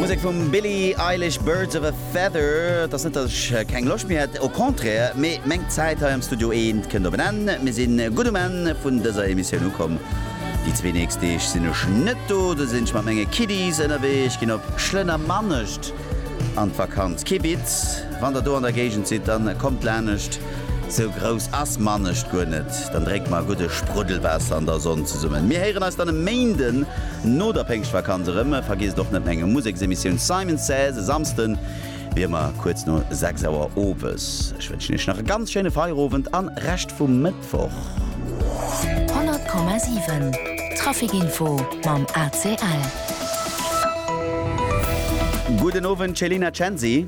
Musek vum Billie Eilish, Birds of a Feather. Et ass net, datt ech keng Loscht méi hätt, au contraire, mee meng Zäit hei am Studio Eent kënnt op en Enn. Mir si gutt um Enn vun dëser Emissioun ukomm. Déi zwee nächst Deeg sinn ech net do, do sinn ech mat menge Kiddies ënnerwee. Ech ginn op Schlënnermanescht. An d'Vakanz Kibitz. Wann der do an der Géigend sidd, dann kommt lanescht, sou grouss ass Manescht guer net. Dann drénkt mer e gudde Spruddelwaasser an der Sonn zesummen. Mir héieren eis dann e Méinden no der Péngschtvakanz erëm. Vergiesst och net meng Museksemissioun Simon Says e Samsden wéi ëmmer kuerz no 6 Auer owes. Ech wënschen iech nach e ganz schéine Feierowend an Rescht vum. Mëttwoch. 100,7 Trafic Info mam ACL. Gudden Owend Céline Censi.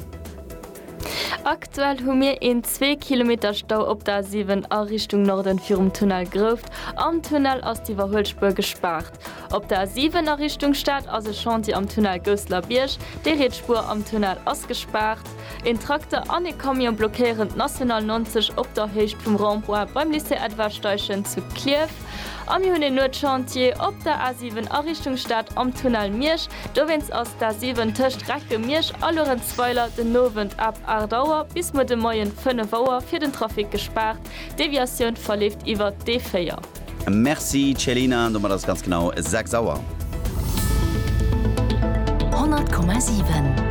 Aktuell hu mir een zwee Kilometer Stau op der A7 a Richtung Norden virum Tunnel Grouft. Am Tunnel ass d'Iwwerhuelspuer gespaart. Op der A7 a Richtung Stad ass e Chantier am Tunnel Gousselerbierg. Déi riets Spuer am Tunnel ass gespaart. Een Trakter an ee Camion blockéieren d'National 90 op der Héicht vum Rond-point beim Lycée Edward Steichen zu Klierf. A mir hunn een Nuetschantier op der A7 a Richtung Stad am Tunnel Miersch. Dowéinst ass d'A7 tëscht Recken, Miersch a Luerenzweiler den Owend ab 8 Auer bis muer de Moien 5 Auer fir den Trafic gespaart. D'Deviatioun verleeft iwwer d'E4. Merci Celina, domat ass et ganz genau 6 Auer. 100,7.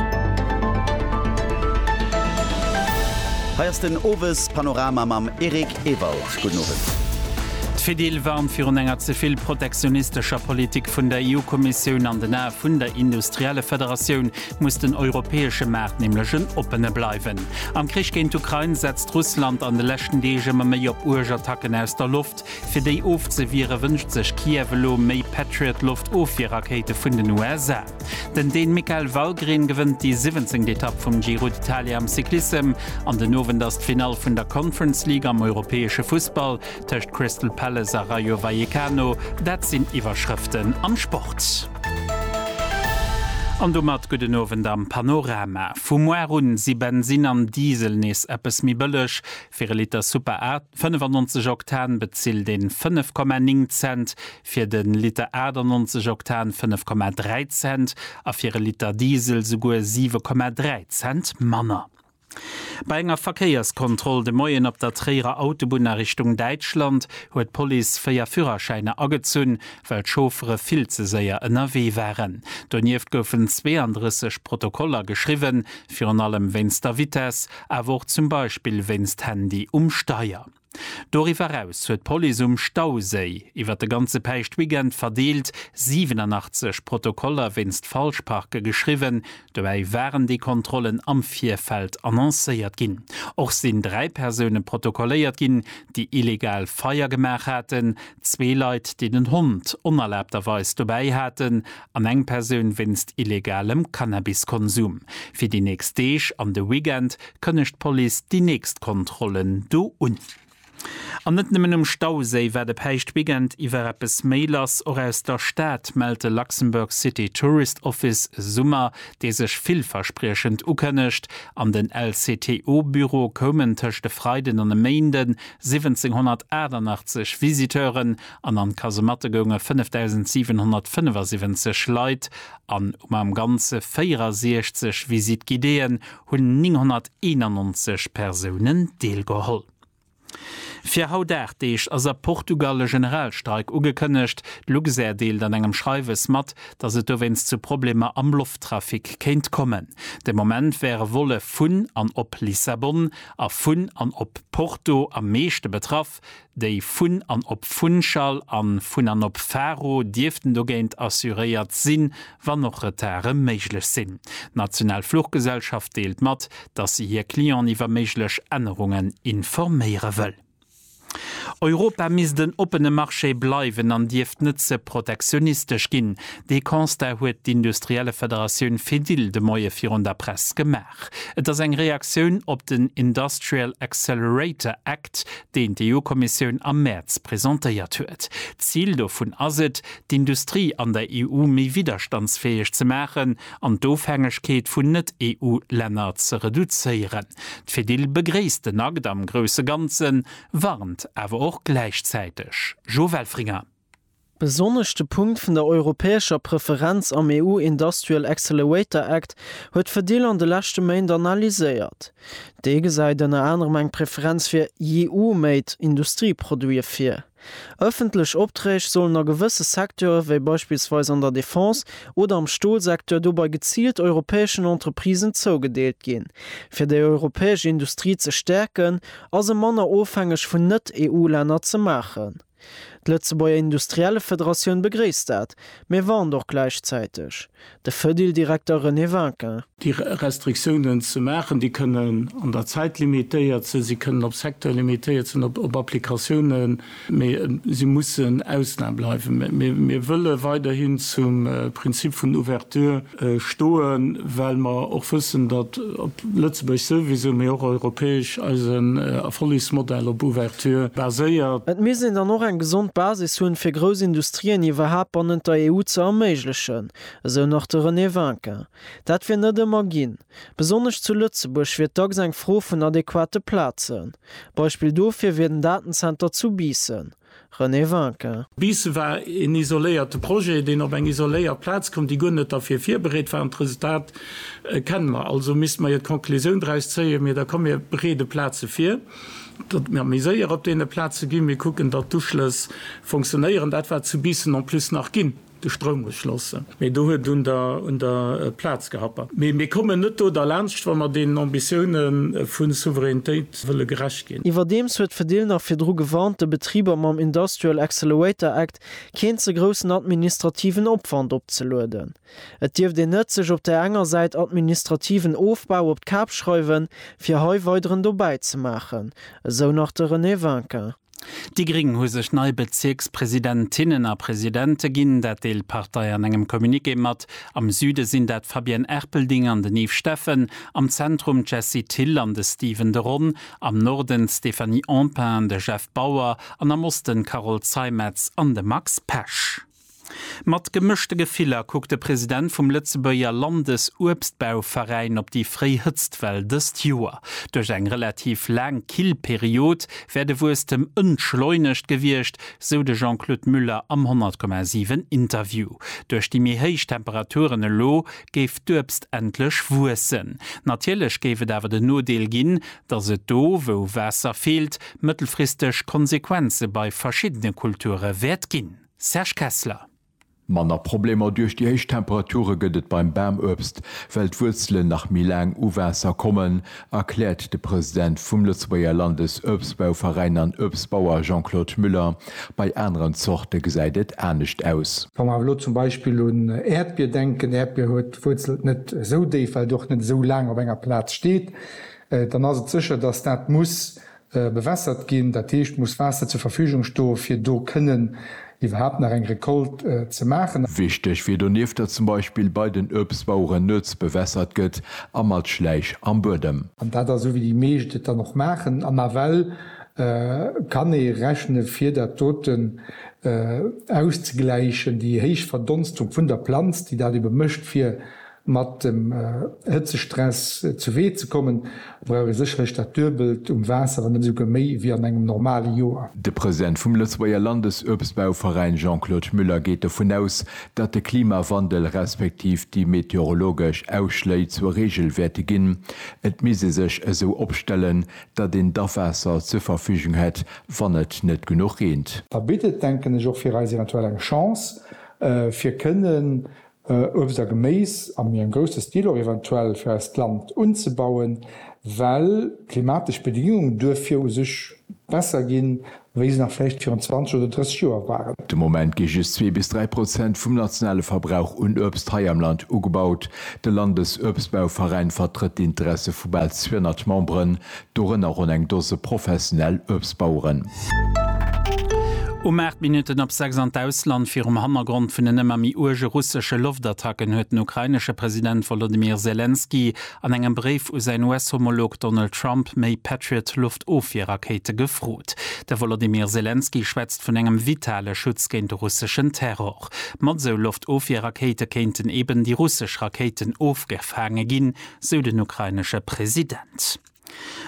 Hei ass den Owespanorama mam Eric Ewald. Gudden Owend. D'Fedil warnt virun enger ze vill protektionistescher Politik vun der EU-Kommissioun an den Ae vun der Industriellefederatioun. muss den europäesche Maart nämlech en oppene bleiwen. Am Krich géint d'Ukrain setzt Russland an de leschten Deeg ëmmer méi op uerg Attacken aus der Loft. Fir déi ofzewiere wënscht sech Kiew elo méi Patriot-Loftofwierrakéite vun den USA. Den Dän Mikael Wallgren gewënnt déi siwwenzéngt Etapp vum Giro d'Italia am Cyclissem an den Owend ass d'Finall vun der Conference League am europäesche Fussball. tëscht Crystal Palace a Rayo Vallecano, dat sinn Iwwerschrëften am Sport. An domat gudden Owend am Panorama. Vu muar un si Bensinn an Diesel nees eppes méi bëlleg. Fir e Liter Super A 95 Oktan bezilt een 5,9 Cent, fir de Liter 98 Oktan 5,3 Cent a fir e Liter Diesel souguer 7,3 Cent manner. Bei enger Verkéierskontroll de Moien op der Tréierer Autobunn a Richtung Däitschland huet d'Police véier Führerschäiner agezunn, well d'Chauffere vill ze séier ënnerwee waren. Donieft goufen 32 Protokoller geschriwwen, virun allem wéinst der Vitess, awer och zum Beispill wéinst Handy um Steier. Doriwwer eraus huet d'Police um Stauséi iwwer de ganze Päischtweekend verdeelt 87 Protokoller wéinst Falschparke geschriwwen. Dobäi waren déi Kontrollen am Virfeld annoncéiert ginn. Och sinn dräi Persoune protokolléiert ginn, déi illegal Feier gemaach haten, zwee Leit, déi den Hond onerlaabterweis dobäi haten an eng Persoun wéinst illegalem Cannabiskonsum. Fir déi nächst Deeg an de Weekend kënnegt d'Police déi nächst Kontrollen do un. An net nëmmen um Stauséi war de Päischtweekend iwwer eppes méi lass. Och aus der Stad mellt de Luxembourg City Tourist Office e Summer, dee sech villverspriechend ukënnegt. An den LCTO-Büro koumen tëscht e Freiden an e Méinden 1788 Visiteuren an an d'Kasematte gounge 5.775 Leit an um am Ganze 64 Visite guidéeën hunn 991 Persounen deelgeholl. Fir haut 8 Deeg ass a Portugal e Generalstreik ugekënnegt. D'Luxair deelt an engem Schreiwes mat, datt et dowéinst zu Problemer am Lofttrafic kéint kommen. De Moment wäre Volle vun an op Lissabon a vun an op Porto am meeschte betraff. Schaff, déi vun an op Funchal an vun an op Faro dierften dogéint assuréiert sinn, wann och Retarde méiglech sinn. D'national Fluchgesellschaft deelt mat, dass se hir Clienten iwwer méiglech Ännerungen informéiere wëll. Europa misst en oppene Marché bleiwen an dierft net ze protektionistesch ginn. Dee Constat huet d'Industriellefederatioun Fedil de Moie virun der Press gemaach. Et ass eng Reaktioun op den Industrial Accelerator Act, deen d'EU-Kommissioun am Mäerz presentéiert huet. D'Zil dovun ass et, d'Industrie an der EU méi widderstandsfäeg ze maachen an d'Ofhängegkeet vun Net-EU-Länner ze reduzéieren. D'Fedil begréisst den Akt am grousse Ganzen, warnt awer och gläichzäiteg. Jo Welfringer. Besonnesch de Punkt vun der europäescher Preferenz am EU Industrial Accelerator Act huet Fedil an de leschte Méint analyséiert. Dee gesäit ënner anerem eng Preferenz fir EU-made Industrieproduite vir. Ëffentlech Opträg sollen a gewësse Secteure wéi beispillsweis an der Defense oder am Stolsecteur dobei geziilt europäeschen Entreprisen zougedeelt ginn. Fir déi europäesch Industrie ze stäerken, ass e manner ofhängeg vun Net-EU-Länner ze maachen. D'Lëtzebuerger Industriellefederatioun begréisst dat, mee warnt och gläichzäiteg. De Fedil-Direkter René Vinquin. Déi Restriktiounen ze maachen, déi kënnen an der Zäit limitéiert sinn, si kënnen op Secteur limitéiert sinn, op Applikatiounen, mee si mussen Ausnam bleiwen. Mir wëlle weiderhin zum Prinzip vun Ouverture stoen, well mer och wëssen, datt op Lëtzebuerg souwisou, mee och europäesch eisen Erfollegsmodell op Ouverture baséiert. Et misst een dann och eng gesond Basis hunn, fir grouss Industrien iwwerhaapt bannent der EU ze erméiglechen, esou nach de René Winkin. Dat wier net ëmmer ginn. Besonnesch zu Lëtzebuerg wier dacks eng Fro vun adequate Plazen. Beispill dofir wier den Datenzenter zu Biissen. René Vinquin. Bis war een isoléierte Projet, deen op eng isoléiert Plaz koum, déi guer net derfir virbereet war. An d'Resultat kenne mer. Also misste mer jo d'Conclusioun draus zéien, Mir da komm, mir bereede Plaze vir, datt mir méi séier op deene Plaze ginn, mir kucken, datt d'Uschlëss fonctionnéieren. Dat war zu Biissen en plus nach ginn. De Stroum muss schlossen. Mee do huet un der un der Plaz gehappert. Mee mir kommen net do derlaanscht, wa mer deenen Ambitioune vu Souveränitéit wëlle gerecht ginn. Iwwerdeems huet d'Fedil nach virdru gewarnt, de Betriber mam Industrial Accelerator Act keen ze groussen administrativen Opwand opzelueden. Et dierft een net sech op där enger Säit administrativen Ofbau op d'Kap schreiwen, fir hei weideren dobäi ze maachen, esou nach de René Winkin. Déi gréng hu sech nei Bezierkspresidentinnen a presidente ginn, dat deelt d'Partei an engem Communiqué mat. Am Süde sinn dat d'Fabienne Erpelding an den Yves Steffen, am Zentrum d'Jessie Thill an de Steven de Ron, am Norden d'Stéphanie Empain an de Jeff Bauer an am Osten d'Carole Zeimetz an de Max Pesch. Mat gemëschte Gefiller kuckt de President vum Lëtzebuerger Landesuebstbauveräin op déi fréi Hëtztwell dëst Joer. Duerch eng relativ laang kill Period wär de Wuesstem entschleunegt gewiescht, sou de Jean-Claude Muller am 100,7 Interview. Duerch déi méi héich Temperaturen elo géif d'Uebst endlech wuessen. Natierlech géif et awer den Nodeel ginn, datt et do, wou Waasser feelt, mëttelfristeg Konsequenze bei verschiddene Kulture wäert ginn. Serge Kessler. Manner Problemer duerch déi héich Temperature gëtt et beim Bamuebst, well d'Wuerzelen nach méi laang u Waasser kommen, erkläert de President vum Lëtzebuerger Landesuebstbauveräin an Uebstbauer Jean-Claude Müller. Bei aneren Zorte gesäit et anescht aus. Wa mer awer elo zum Beispill un Äerdbier denken, Äerdbier huet d'Wuerzelt net esou déif, well et och net esou laang op enger Plaz steet, dann ass et sécher, datt dat muss bewässert ginn, dat heescht muss Waasser zur Verfügung sto fir do kënnen iwwerhaapt nach eng Récolte ze maachen. Wichteg wier donieft, datt zum Beispill bei den Uebstbaueren nuets bewässert gëtt a mat Schläich am Buedem. An dat ass esou wéi déi meescht et dann och maachen an nawell kann ee rechne fir dat doten auszegläichen, déi héich Verdonstung vun der Planz déi dat ebe mécht fir Mat dem Hëtzestress zu Wee ze kommen, brauch ee sécherlech dat Duebelt um Waasser, wann net esouguer méi, wéi an engem normale Joer. De President vum Lëtzebuerger Landesuebstbauveräin Jean-Claude Müller geet dovun aus, datt de Klimawandel respektiv déi meteorologesch Ausschléi zur Reegel wäerte ginn. Et misst ee sech esou opstellen, datt een d'Awaasser zur Verfügung hätt, wann et net genuch reent. Da bitt et, denken ech, och fir eis eventuell eng Chance, fir kënnen Uebst a Geméis a méi am grousse Stil och eventuell fir eist Land unzebauen, well d'klimatesch Bedingunge duerfir u sech besser ginn, wéi se nach vläicht virun 20 oder 30 Joer waren. De Moment gi just zwee bis dräi Prozent vum nationale Verbrauch un Uebst hei am Land ugebaut. De Landesuebstbauveräin vertrëtt d'Interesse vu bal 200 Memberen, Dorënner ronn eng Dose professionell Uebstbaueren. Um 8 Minutten op 6 an d'Ausland. Virum Hannergrond vun den ëmmer méi uerge russesche Loftattacken huet den ukrainesche President Wolodymyr Selenskyj an engem Bréif u säin US-Homolog Donald Trump méi Patriot-Loftofwierrakéite gefrot. De Wolodymyr Selenskyj schwätzt vun engem vitale Schutz géint de russeschen Terror. Mat esou Loftofwierrakéite kéinten eben déi russesch Rakéiten ofgefaange ginn, sou den ukrainesche President.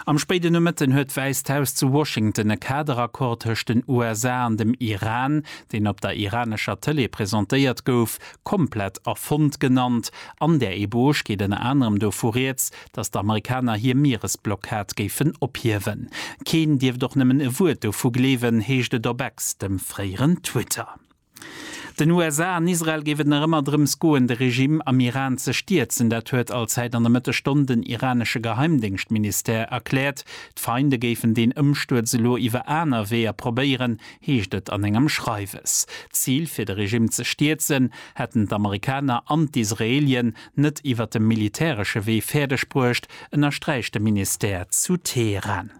Am spéiden Nomëtten huet d'Wäisst Haus zu Washington e Kaderaccord tëscht den USA an dem Iran, deen op der iranescher Tëlee presentéiert gouf, komplett erfonnt genannt. An där Eboge geet ënner anerem dovu rieds, datt d'Amerikaner hir Mieresblockad géifen ophiewen. Keen dierft och nëmmen e Wuert dovu gleewen, heescht et op Ex, dem fréieren Twitter. Den USA an Israel géif et nach ëmmer drëms goen, de Regime am Iran ze stierzen. Dat huet Allzäit an der Mëttesstonn den iranesche Geheimdéngschtministère erkläert. D'Feinde géifen deen Ëmstuerz elo iwwer aner Weeër probéieren, heescht et an engem Schreiwes. D'Zil, fir de Regime ze stierzen, hätten d'Amerikaner an d'Israelien net iwwer de militäresche Wee fäerdeg bruecht, ënnersträicht de Ministère zu Teheran.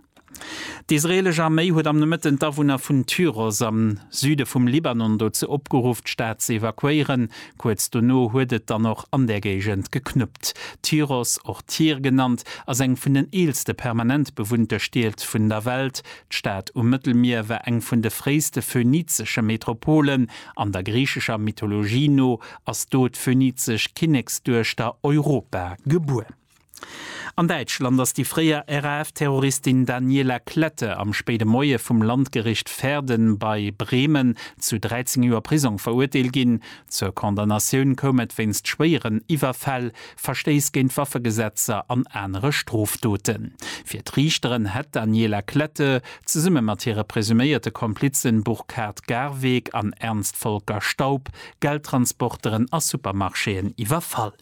D'israeelesch Arméi huet am Nomëtten d'Awunner vun Tyros am Süde vum Libanon dozou opgeruff, d'Stad ze evakuéieren. Kuerz dono huet et dann och an där Géigend geknuppt. Tyros, och Tyr genannt, ass eng vun den eelste permanent bewunnte Stied vun der Welt. D'Stad um Mëttelmier war eng vun de fréiste phönizesche Metropolen. An der griichescher Mythologie no ass do d'phönizesch Kinneksduechter Europa gebuer. An Däitschland ass déi fréier RAF-Terroristin Daniela Klette am spéide Moie vum Landgericht Verden bei Bremen zu 13 Joer Prisong verurteelt ginn. Zur Condamnatioun koum et wéinst schwéieren Iwwerfäll, Verstéiss géint d'Waffegesetzer an anere Strofdoten. Fir d'Riichteren hätt d'Daniela Klette, zesumme mat hire presuméierte Komplizen Burkhard Garweg an Ernst Volker Staub, Geldtransporteren a Supermarchéen iwwerfall.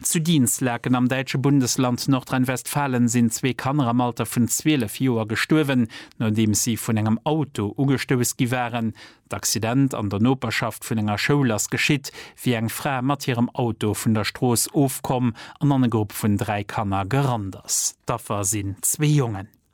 Zu Dinslaken am däitsche Bundesland Nordrhein-Westfalen sinn zwee Kanner am Alter vun 12 Joer gestuerwen, nodeems si vun engem Auto ugestouss gi waren. D'Accident an der Noperschaft vun enger Schoul ass geschitt, wéi eng Fra mat hirem Auto vun der Strooss ofkomm an an e Grupp vun dräi Kanner gerannt ass. D'Affer sinn zwee Jongen.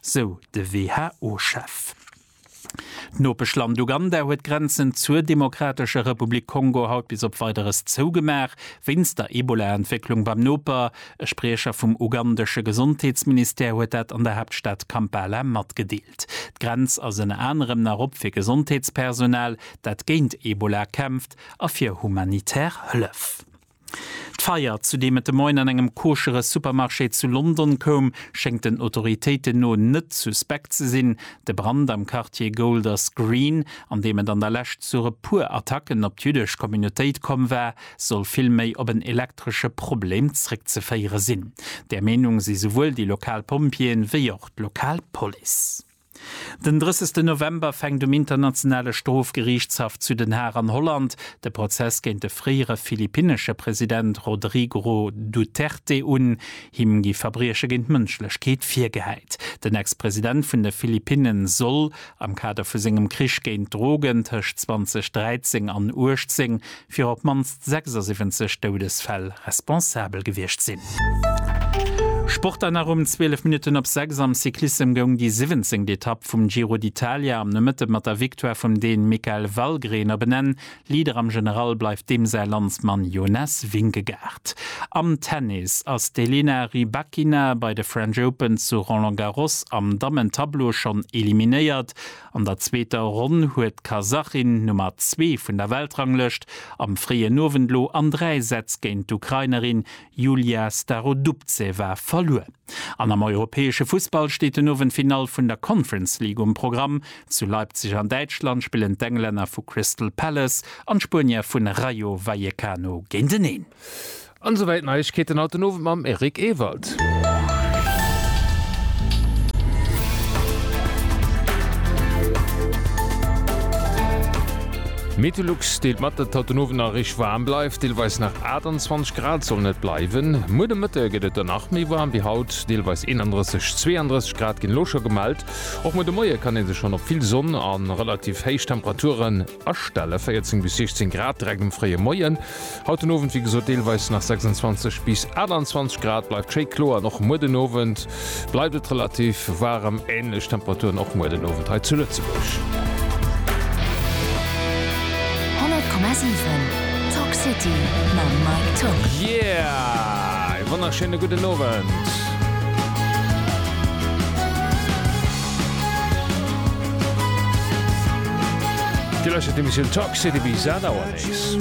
sou de WHO-Chef. D'Nopeschland Uganda huet d'Grenzen zur Demokratescher Republik Kongo haut bis op Weideres zougemaach, wéinst der Ebola-Entwécklung beim Noper. E Spriecher vum ugandesche Gesondheetsministère huet dat an der Haaptstad Kampala matgedeelt. D'Grenz ass ënner anerem nach op fir Gesondheetspersonal, dat géint Ebola kämpft a fir humanitär Hëllef. D'Feier, zu deem et de Moien an engem koschere Supermarché zu London koum, schéngt den Autoritéiten no net suspekt ze sinn. De Brand am Quartier Golders Green, an deem et an der Lescht zu e puer Attacken op d'jüddesch Communautéit komm war, soll vill méi op en elektresche Problem zréckzeféiere sinn. Där Meenung si souwuel déi lokal Pompjeeën, wéi och d'lokal Police. Den 30 November fänkt um Internationale Strofgeriichtshaff zu Den Haag an Holland de Prozess géint de fréiere philippinnesche President Rodrigro Duterte un. Him gi Verbrieche géint d'Mënschlechkeet virgehäit. Den Ex-President vun de Philippinne soll am Kader vu sengem Krich géint d'Drogen tëscht 2013 an 18 fir op d'mannst 76 Doudesfäll responsabel gewiescht sinn. Sport dann nach um 12 Minutten op 6 am Cyclissem goung déi siwwenzéngt Etapp vum Giro d'Italia am Nomëtte mat der Victoire vum Deen Mikael Wallgren op en Enn. Leader am General bleift deem säi Landsmann Jonas Vingegaard. Am Tennis ass d'Elena Rybakina bei de French Open zu Roland Garros am Dammen-Tableau schonn eliminéiert. An der zweeter Ronn huet d'Kasachin, Nummer zwee vun der Weltranglëscht, am fréien Owend lo an dräi Sätz géint d'Ukrainerin Yulia Starodubtseva verluer. An am europäesche Fussball steet den Owend d'Finall vun der Conference League um Programm. Zu Leipzig an Däitschland spillen d'Englänner vu Crystal Palace an d'Spuenier vun Rayo Vallecano géinteneen. An esou wäit Neiegkeeten haut den Owend mam Eric Ewald. Meteolux deelt mat, datt et haut den Owend nach eréischt waarm bleift, deelweis nach 28 Grad sollen et bleiwen. Muer de Mëtte gëtt et dann nach méi waarm wéi haut, deelweis 31, 32 Grad ginn elo scho gemellt. Och muer de Moie kann ee sech schonn op vill Sonn a relativ héich Temperaturen astellen, 14 bis 16 Grad direkt um fréie Moien. Haut den Owend wéi gesot deelweis nach 26 bis 28 Grad, bleift schéi kloer an och muer den Owend bleift et relativ waarem. Änlech Temperaturen och muer den Owend hei zu Lëtzebuerg. 100,7 Talk City mam Mike Tock. Yeah! Ee wonnerschéine gudden Owend. Dir lauschtert d'Emissioun Talk City bis 8 Auer nees.